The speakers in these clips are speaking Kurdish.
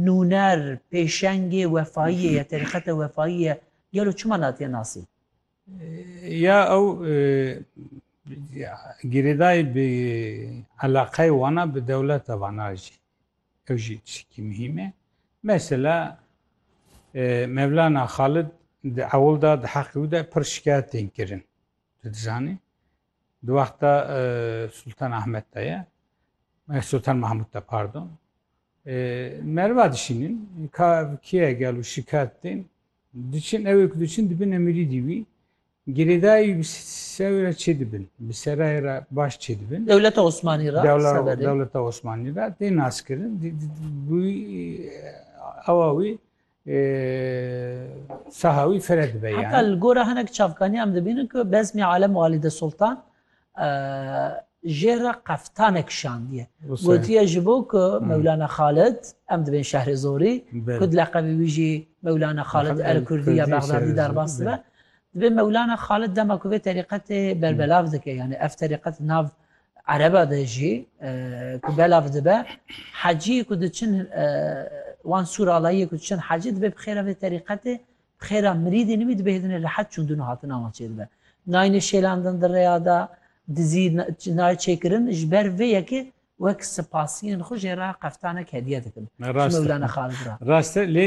nûner, pêşengê wefayiyê ye, terîqete wefayî ye, gelo çima natiye nasî? Ya ew girêdayî bi eleqeyê wan a bi dewleta wan a jî. Ew jî tiştekî muhîm e. Mesela Mevlana Xalid di ewil de di heqê wî de pir şikayetên kirin. Tu dizanî? Di wexta Sultan Ahmed de ye. Sultan Mahmud de pardon. Merva dişînin ka kiye gel û şikayet tên. Diçin ew ku diçin dibin emirî dî wî. Girêdayî bi sew re çê dibin. Bi serayê re baş çê dibin. Dewleta Osmanî re severê. Dewleta Osmanî re tê naskirin. Bi awa wî Sahawî fire dibe yan. Heta li gora hinek çavkaniyan em dibînin ku Bezmî Alem Walide Sultan jê re qeftanek şandiye. Gotiye ji bo ku Mewlana Xalid em dibên şehrê Zorî ku di leqebê wî jî Mewlana Xalid El Kurdî ya Bexdadî derbas dibe. Divê Mewlana Xalid dema ku vê terîqetê berbelav dike yanî ev terîqet nav Ereba de jî ku belav dibe hecî ku diçin wan sûr alayiyê ku diçin hecî dibe bi xêra vê terîqetê bi xêra mirîdê nû wî dibe hêdinê rehet çûndin û hatina wan çêdibe. Nayne şêlandin di rêya de dizî nayê çêkirin ji ber vê yekê wek sipasiyên xwe jê re qeftanek hediye dikin ji Mewlana Xalid re. Rast e lê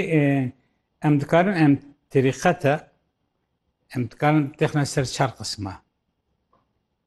em dikarin em terîqete em dikarin btexne ser çar qisma.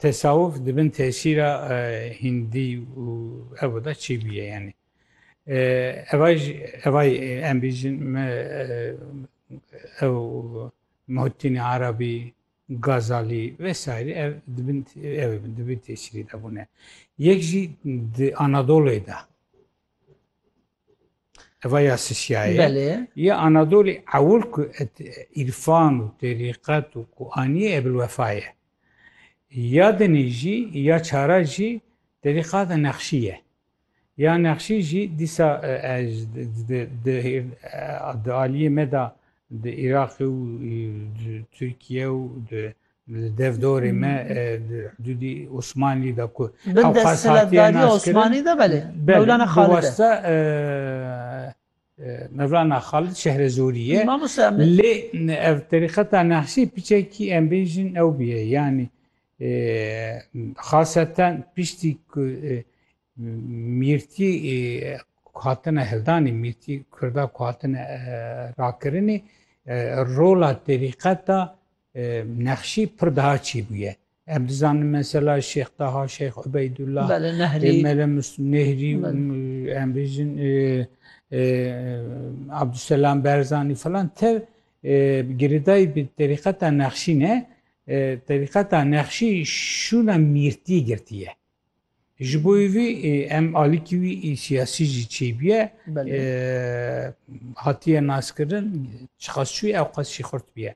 Tesawuf di bin tesîra hîndî û evo de çi bûye yanî? Evay em bîjin me ew Muhittînê Arabî, Gazalî vesaîrî ev di bin ew bin di bin tesîrî de bûne. Yek jî di Anadolê de Eva ya Sisyaye. Belê. Ya Anadolî ewil ku et îrfan û terîqet û ku aniyê Ebilwefa ye. Ya dinî jî ya çara jî terîqata Nexşî ye. Ya Nexşî jî dîsa ez di aliyê me de di Îraqê û di Tirkiye û di Li dev dorê me di hudûdî Osmanlî de ku Bin desthilatdariya Osmanî de belê. Mevlana Xalid. Wasta Mevlana Xalid Şehrezorî ye. Mamoste em lê ev terîqeta Nahşî piçekî em bêjin ew bûye. Yanî xaseten piştî ku mîrtî hatine hildanî mîrtî Kurda ku hatine rakirinî rola terîqeta Nexşî pir daha çî bûye. Em dizanin mesela Şêx Taha, Şêx Ubeydullah, Mele Nehrî, em bêjin Abdulselam Berzanî filan tev girêdayî bi terîqeta Nexşî ne. Terîqeta Nexşî şûna mîrtî girtiye. Ji bo vê em alîkî wî siyasî jî çêbûye hatiye naskirin çiqas çûye ew qas jî xurt bûye.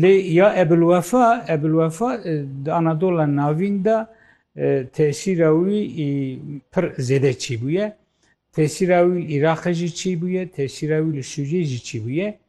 Lê ya Ebilwefa Ebilwefa di Anadola navîn de tesîra wî pir zêde çêbûye. Tesîra wî li Îraqê jî çêbûye, tesîra wî li Sûriyê jî çêbûye.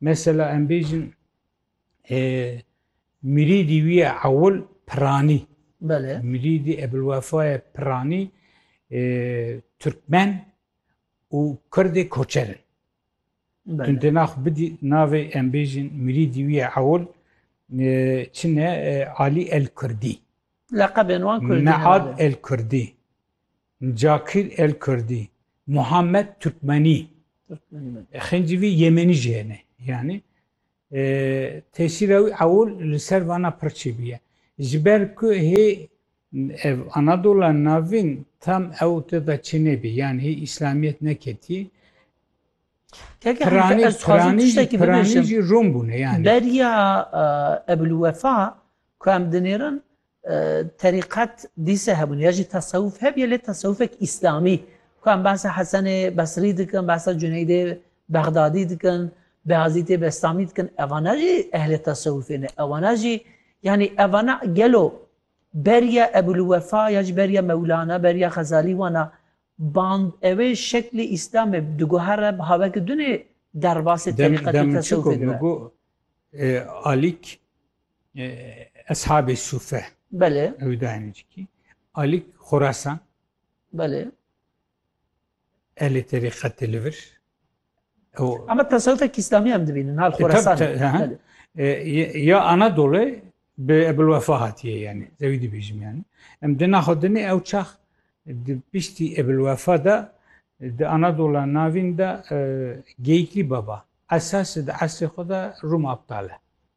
Mesela em bêjin e, mirîdî wî ye ewil piranî. Belê. Mirîdî Ebilwefa ye piranî e, Türkmen û Kurdê koçer in. Tu dê nax bidî navê em bêjin mirîdî wî ye ewil çin e Alî El Kurdî. Leqebên wan Kurdî. Mead El Kurdî. Cakir El Kurdî, Muhammed Turkmenî, xencî vî Yemenî jî hene yanî tesîra wî ewil li ser vana pir çêbiye. Ji ber ku hê ev Anadola navîn tam ew te de çê nebî yan hê îslamiyet neketî Piranî jî Rom bûne yani. Beriya Ebulwefa ku em dinêrin Terîqet dîse hebûn ya jî tesewûf hebîye lê tesewûfek îslamî. Ku em behsa Hesenê Besrî dikin, behsa Cuneydê Bexdadî dikin, Beyazîtê Bestamî dikin evana jî ehlê tesewûfê ne. Ewana jî yanî evana gelo beriya Ebûlwefa ya jî beriya Mewlana, beriya Xezalî wana band ewê şeklê îslamê di guha re biha weke dune derbasê terîqet û tesewûfê dibe. Alîk Eshabê Sûfe. Belê. Ew dayînê cikî. Alîk Xurasan. Belê. Elê terîqetê li vir. Ama tasavvufek İslami hem dibînin hal Xurasan. Ya Anadolu bi Ebul Wefa hatiye yani. Zewî dibêjim yani. Em di naxwedinê ew çax di piştî Ebul Wefa da di Anadola navîn da Geyikli Baba. Esas di esrê xwe da Rum aptal e.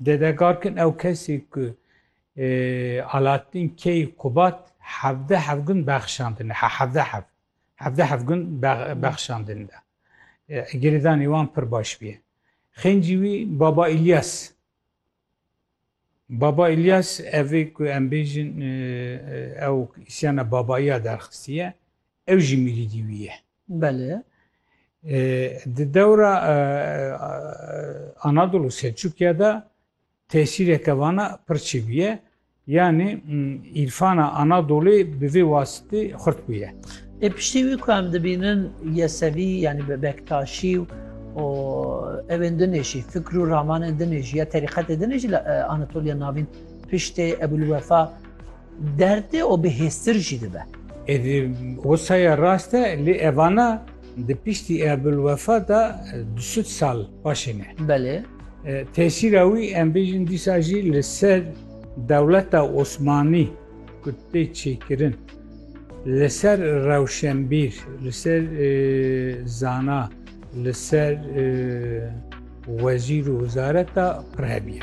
Dede Garkin ew kesê ku Alaaddin key Qubat hevdeh hevgund bexşandine he hevdeh hev hevdeh hevgund bexşandin de girêdanê wan pir baş bûye. Xêncî wî Baba Îlyas Baba Îlyas evê ku em bêjin ew îsyana babaiya derxistiye ew jî mirîdî wî ye. Belê. Di dewra Anadolu Selçukya de tesîreke vana pir çêbû ye. Yanî îrfana Anadolê bi vê wasitî xurt bûye. Ê piştî wî ku em dibînin Yesevî yanî bi Bektaşî û evên din ê jî fikr û ramanên din ê jî ya terîqetê din ê jî li Anatoliya Navîn piştê Ebûlwefa Derdê û bi hêztir jî dibe. Êdî wisa ye rast e lê evana di piştî Ebulwefa de du sed sal paşê ne. Belê. Tesîra wî em bêjin dîsa jî li ser dewleta Osmanî ku tê çêkirin li ser rewşenbîr, li ser zana, li ser wezîr û wizareta pir hebî ye.